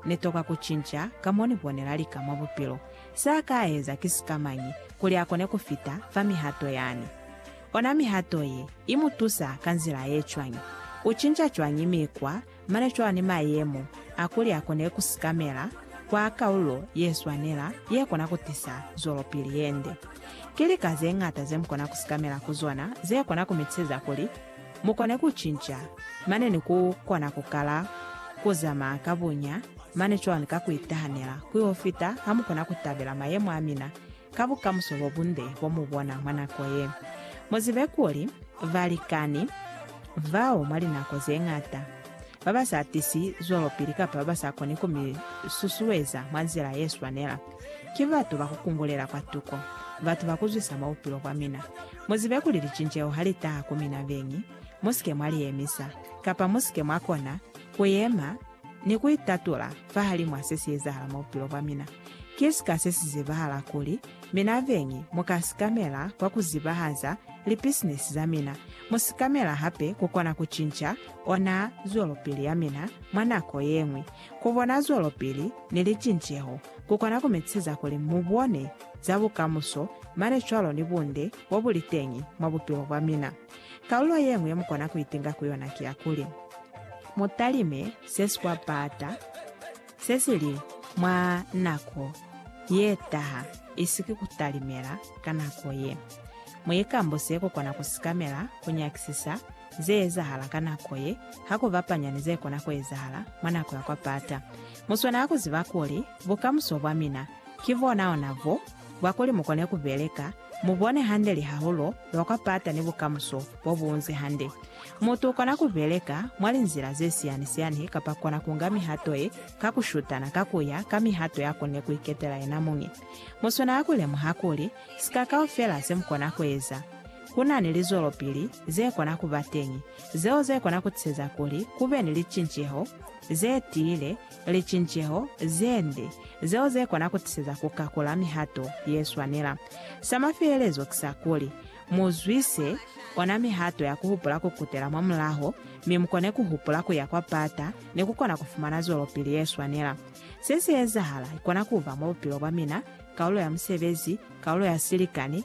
Ni toka ku cinca ka mo ni bonela lika mwa bupilo. Se a ka eza ki sikamañi kuli a kone ku fita fa mihato yani? Ona mihato ye i mu tusa ka nzila ye cwañi? U cinca cwañi mikwa mane cwalo ni mayemo a kuli a kone ku sikamela kwa kaulo ye swanela ye kona ku tisa zwelopili ye nde? Ki lika ze ñata ze mu kona ku sikamela ku zona ze kona ku mi tiseza kuli Mu kone ku cinca, mane ni ku kona ku kala ku zamaya ka bunya mane cwalo ka ku itahanela kwi ho fita ha mu kona ku tabela mayemo a mina ka bukamuso bo bunde bo mu bona mwa nako ye. Mu zibe kuli, balikani bao mwa linako ze ñata ba ba sa tisi zwelopili kapa ba ba sa koni ku mi susueza mwa nzila ye swanela, ki batu ba ku kungulela kwatuko, batu ba ku zwisa mwa bupilo bwa mina. Mu zibe kuli licinceho ha li taha ku mina beñi, mu si ke mwa li yemisa, kapa mu si ke mwa kona ku yema ni ku itatula fahalimw'a se si ezahala mwa bupilo bwa mina. Ki sika se si zibahala kuli mina beñi mu ka sikamela kwa ku zibahaza lipisinisi za mina, mu sikamela hape ku kona ku cinca ona zwelopili ya mina mwa nako ye ñwi. Ku bona zwelopili ni licinceho ku kona ku mi siza kuli mu bone za bukamuso mane cwalo ni bunde bo bu li teñi mwa bupilo bwa mina. Kalulo ye ñwi ye mu kona ku itinga ku yona ki ya kuli, Mu talime se si kwa baata, se si li mwa nako ye taha, isiki ku talimela ka nako ye. Mu ikambuse ku kona ku sikamela ku nyakisisa ze ezahala ka nako ye ha ku bapanya ni ze kona ku ezahala mwa nako ya kwa pata. Mu swana ha ku ziba kuli bukamuso bwa mina ki bona-ona bo bwa kuli mu kone ku beleka, mu bone hande lihahulo lwa kwa pata ni bukamuso bo bu unzi hande. Mutu u kona ku beleka mwa linzila ze siyani-siyani kapa kona ku nga mihato ye ka ku shutana ka ku ya ka mihato ya konile ku iketela yena muñi. Mu swana ha ku lemuha kuli si ka kaufela se mu kona ku eza. ku na ni lizwelopili ze kona ku ba teñi zeo ze kona ku tiseza kuli ku be ni licinceho ze tiile, licinceho ze nde, zeo ze kona ku tiseza ku kakula mihato ye swanela. Sa mafelelezo ki sa kuli, mu zwise ona mihato ya ku hupula ku kutela mwa mulaho, mi mu kone ku hupula ku ya kwa pata ni ku kona ku fumana zwelopili ye swanela. Se si ezahala, i kona ku ba mwa bupilo bwa mina, kaulo ya musebezi, kaulo ya silikani,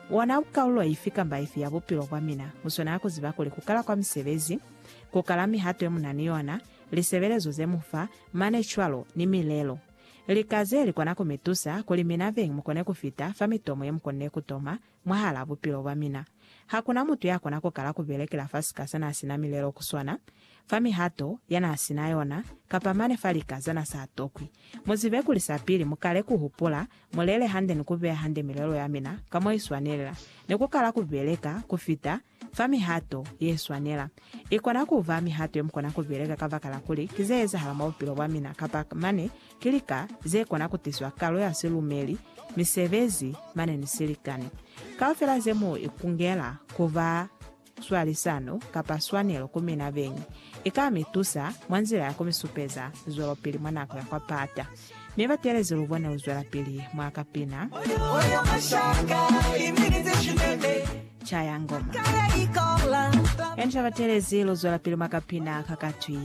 Wona ku kaulo ifi kamba ifi ya bupilo bwa mina, mu swanela ku ziba kuli ku kala kwa misebezi, ku kala mihato ye mu na ni yona, lisebelezo ze mu fa, mane cwalo ni milelo. Lika ze li kona ku mi tusa kuli mina veng mu kone ku fita fa mitomo ye mu konile ku toma mwahal'a bupilo bwa mina. Ha ku na mutu ya kona ku kala ku belekela fa sika sa n'a si na milelo ku swana, fa mihato ya n'a si na yona, kapa mane fa lika za n'a sa tokwi. Mu zibe kuli sapili mu kale ku hupula Mu lele hande ni ku beya hande milelo ya mina ka mo i swanelela, ni ku kala ku beleka ku fita fa mihato ye swanela. I kona ku ba mihato ye mu kona ku beleka kabakala kuli ki ze ezahala mwa bupilo bwa mina kapa mane ki lika ze kona ku tiswa kalo ya silumeli, misebezi, mane ni silikani. Kaufela ze mu ikungela ku ba. swalisano kapa swanelo ku mina beñi i ka mi tusa mwa nzila ya ku mi supeza zwelopili mwa nako ya kwa pata. Mi batelezi lu bone ku zwelapili mwa ka pina. Caya ngoma. Emsha batelezi lu zwelapili mwa ka pina ka katwi.